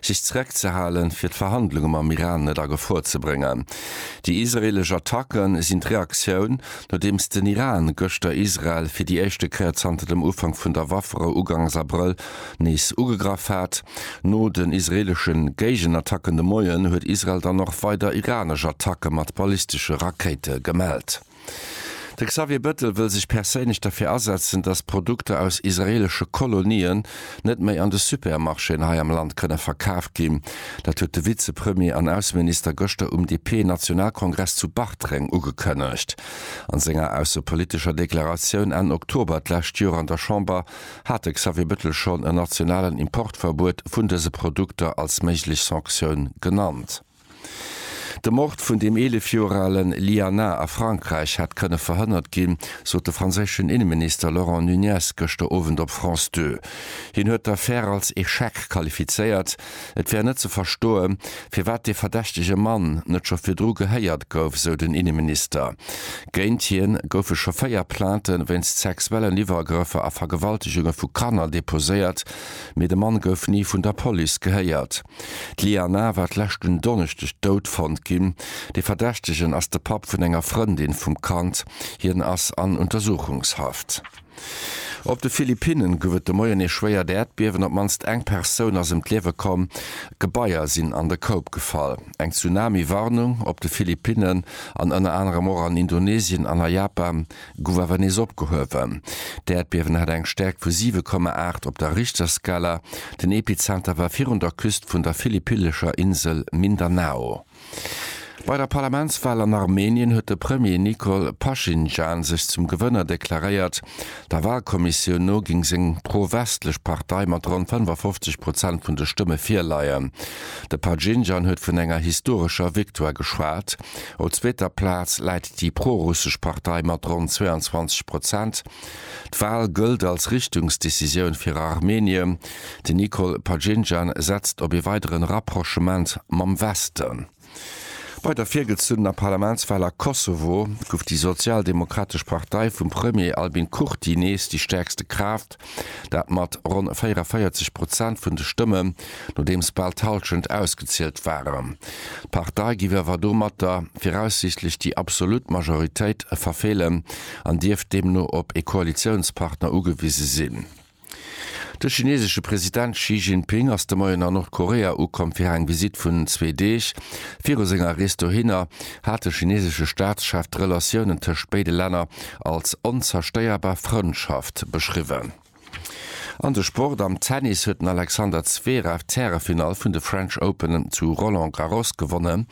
sech zereckzehalen, fir d'Verhandlunge mam Iran net a Gefor ze bréngen. Déi israeelesch Attacke sinn d'Reaktioun, nodeems den Iran gëschter Israel fir déi éischte Kéier zanter dem Ufank vun der Wafferou ugangs Abrëll nees ugegraff hat. No den israeelesche Géigenattacken de Moien huet Israel dann och weider iranesch Attacke mat ballistesche Rakéite gemellt. De Xavier Bettel wëll sech perséinlech derfir asetzen, datt Produkter aus israeelesche Kolonien net méi an de Supermarchéen hei am Land kënne verkaaft ginn. Dat huet de Vizepremier an Ausseminister gëschter um DP-Nationalkongress zu Bartreng ugekënnegt. A senger aussepolitescher Deklaratioun Enn Oktober d'lescht Joer an der Chamber hat de Xavier Bettel schonn en nationalen Importverbuet vun dëse Produkter als méiglech Sanktioun genannt. De Mord vun dem 11 Joer ale Liana a Frankräich hätt kënne verhënnert ginn, sot de franséischen Inneminister Laurent Nunez gëschter Owend op France Deux. Hien huet d'Affär als Echec qualifizéiert. Et wär net ze verstoe firwat dee verdächtege Mann net scho virdru gehéiert gouf, sou den Inneminister. Géint hien goufe scho véier Plainte wéinst sexuellen Iwwergrëffer a Vergewaltegunge vu Kanner deposéiert, mee de Mann gouf ni vun der Police gehéiert. D'Liana war d'lescht un Donneschdeg dout fonnt ginn. De Verdächtegen ass de Papp vun enger Frëndin vum Kand. Hien ass an Untersuchungshaft. Op de Philippinne gouf et de Moien ee schwéiert Äerdbiewen. Op d'mannst eng Persoun ass ëm d'Liewe komm. Gebaier sinn an de Koup gefall. Eng Tsunami-Warnung op de Philippinne an ënner anerem och an Indonesien an a Japan gouf awer nees opgehuewen. D'Äerdbiewen hat eng Stäerkt vu 7,8 op der Richterskala. Den Epizenter war virun der Küst vun der philippillescher Insel Mindanao. Bei der Parlamentswal an Armenien huet de Premier Nikol Paschinjan sech zum Gewënner deklaréiert. Der Walkommissioun no géing seng pro-westlech Partei mat ronn 55 Prozent vun de Stëmme virleien. De Paschinjan huet vun enger historescher Victoire geschwat. Op zweeter Plaz läit déi pro-russesch Partei mat ronn 22 Prozent. D'Wal gëllt als Richtungsdecisioun fir Armenien. Den Nikol Pajinjan setzt op ee weideren Rapprochement mam Westen. Bei der virgezuenener Parlamentswal a Kosovo gouf déi sozialdemokratesch Partei vum Premier Albin Kurti nees déi stäerkste Kraaft. Dat mat ronn 44 Prozent vun de Stëmmen, nodeems bal d'Hallschent ausgezielt waren. D'Partei giff awer domatter viraussiichtlech déi absolut Majoritéit verfeelen an dierft deemno op ee Koalitiounspartner ugewise sinn. De chinesesche President Xi Jinping ass de Moien a Nordkorea ukomm fir eng Visitt vun zwee Deeg. Viru senger Rees dohinner hat de chinesesche Staatschef d'Relatiounen tëscht béide Länner als onzerstéierbar Frëndschaft beschriwwen. An de Sport, Am Tennis huet den Alexander Zverev d'Härefinall vun de French Open zu Roland Garros gewonnen.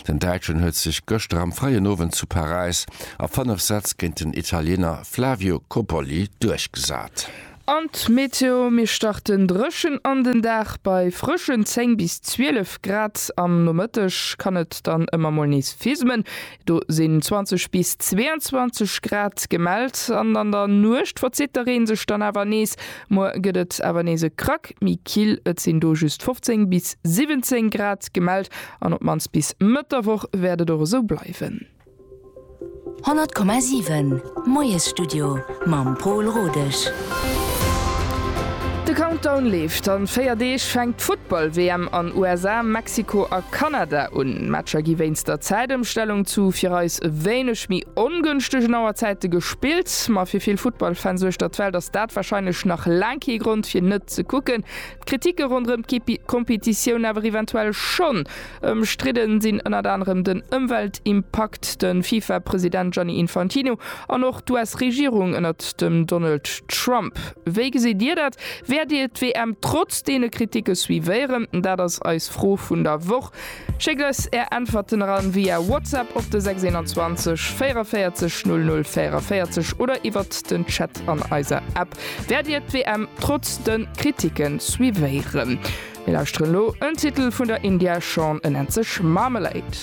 Den Däitschen huet sech gëschter am fréien Owend zu Paräis a 5 Sätz géint den Italiener Flavio Cobolli duerchgesat. An d'Meteo, Mir starten dréchen an den Dag bei frëschen 10 bis 12 Grad. Am Nomëtteg kann et dann ëmmer mol nees fismen, do sinn 20 bis 22 Grad gemellt. An an der Nuecht verzitt de Reen sech dann awer nees, muer gëtt et awer nees e Krack méi kill, et sinn do just 15 bis 17 Grad gemellt. An op d'mannst bis Mëtt der Woch wäert et och esou bleiwen. 100,7 Moiesstudio mam Pol Rodesch. De Countdown leeft. An 4 Deeg fänkt d'Futtball-WM an USA, Mexiko a Kanada un. Matcher gi wéinst der Zäitëmstellung zu fir eis e wéineg méi ongënschtegen Auerzäite gespillt. Ma fir vill Futtball-Fans uechter d'Welt ass dat warscheinlech nach laang kee Grond fir net ze kucken. D'Kriticke ronderëm d'Kompetitioun awer eventuell schonn. Ëmstridden sinn ënnert anerem den Ëmweltimpakt, de FIFA-President Gianni Infantino an och d'US-Regierung ënnert dem Donald Trump. Wéi gesitt Dir dat? Wäert Dir d'WM trotz deene Kriticke suivéieren? Dat ass eis Fro vun der Woch. Schéckt eis Är Äntwerten eran via WhatsApp op de 621 44 00 44 oder iwwert den Chat an eiser App. Wäert Dir d'WM trotz de Kriticke suivéieren? Mir lauschteren lo en Titel vun der India Shawn en nennt sech Marmalade.